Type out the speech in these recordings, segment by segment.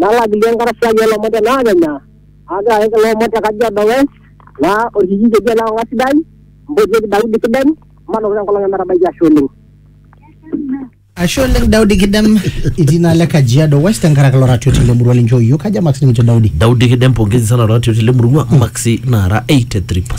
Nalak dii enkarasai oo lomon te naakenya, aagira ayaki kulo omon te Kajiado West, naa olkijiji oji ole Kong'a Sidai, mpotieki Daudi Kidem, matooko te nkolong e metabaiki ashe oleng. Ashe oleng Daudi Kidem itii naa le Kajiado West tenkaraki ilo ratioti le murua linchoo iyiok. Kaja marks nikincho Daudi? Daudi Kidem pongezi sana ratioti le murua, maksi naara 83%.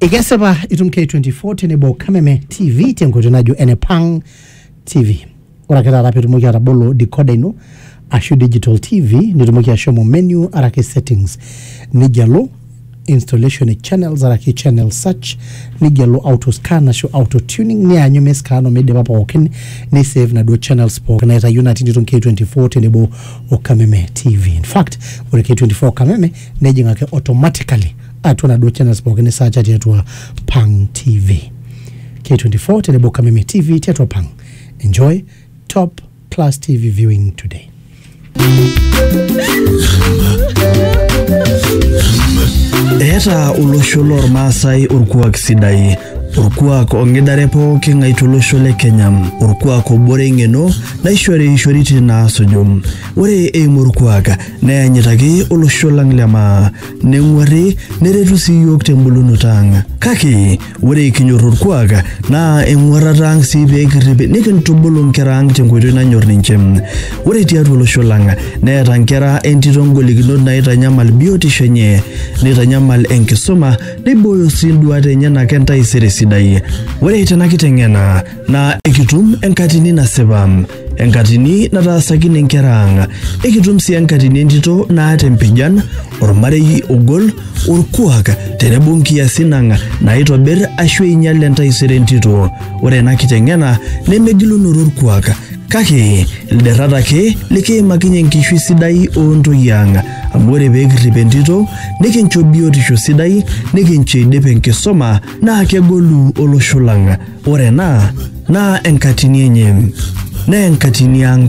ikesipa itum k24 tenebo kameme tv tenkoitoi najo ene pang tv ore ake taata pitumoki atabolo decoder ino ashu digital tv nitumoki ashomo menu araki settings nigelu installation e channels araki channel search nigelu auto scan ashu auto tuning nianyu miscan omidipa pookin nisave naduo channels pookin naitayu natii nitum k24 tenebo o kameme tv in fact ore k24 kameme nejing ake automatically atua naduo channels pookin nisaacha tiatua pang tv k24 tenebo kameme tv tiatua pang enjoy top class tv viewing today Eeta olosho lormaasai orkuak sidai orkuak ong'idare pooki ng'ae tolosho le Kenya orkuak obore eng'eno naishori ishoritin naasuju ore eimu orkuak Neyanyitaki olosho lang le maa, neng'uarri neretu sii iyiook tembulunoto ang. Kake ore kinyor orkuak naa eng'uarrata ang sii pee kirrip nikintubulu nkera ang tenkoitoi nanyor ninche. Ore tiatua olosho lang neeta nkera entito ngolikinot naaitanyamal biotisho enye, neitanyamal enkisuma, neibooyo sii nduaat enyenak entaisere sidai. Ore tena kiteng'ena naa ekitum enkatini nasipa. enkatini nataasakine nkera ang ekitum sii enkatini entito naata empijan ormarei ogol orkuak tenebo nkiasin ang naaitobir ashu einyal entaisere entito ore ena kiteng'ena nemegilunoto orkuak kake ilderrat ake likiimakinye enkishui sidai oontoyie ang amu ore pee kirrip entito nikincho biotisho sidai nikincho eidip enkisoma naa kegolu olosho lang Ore ena naa enkatini enye, naa enkatini ang'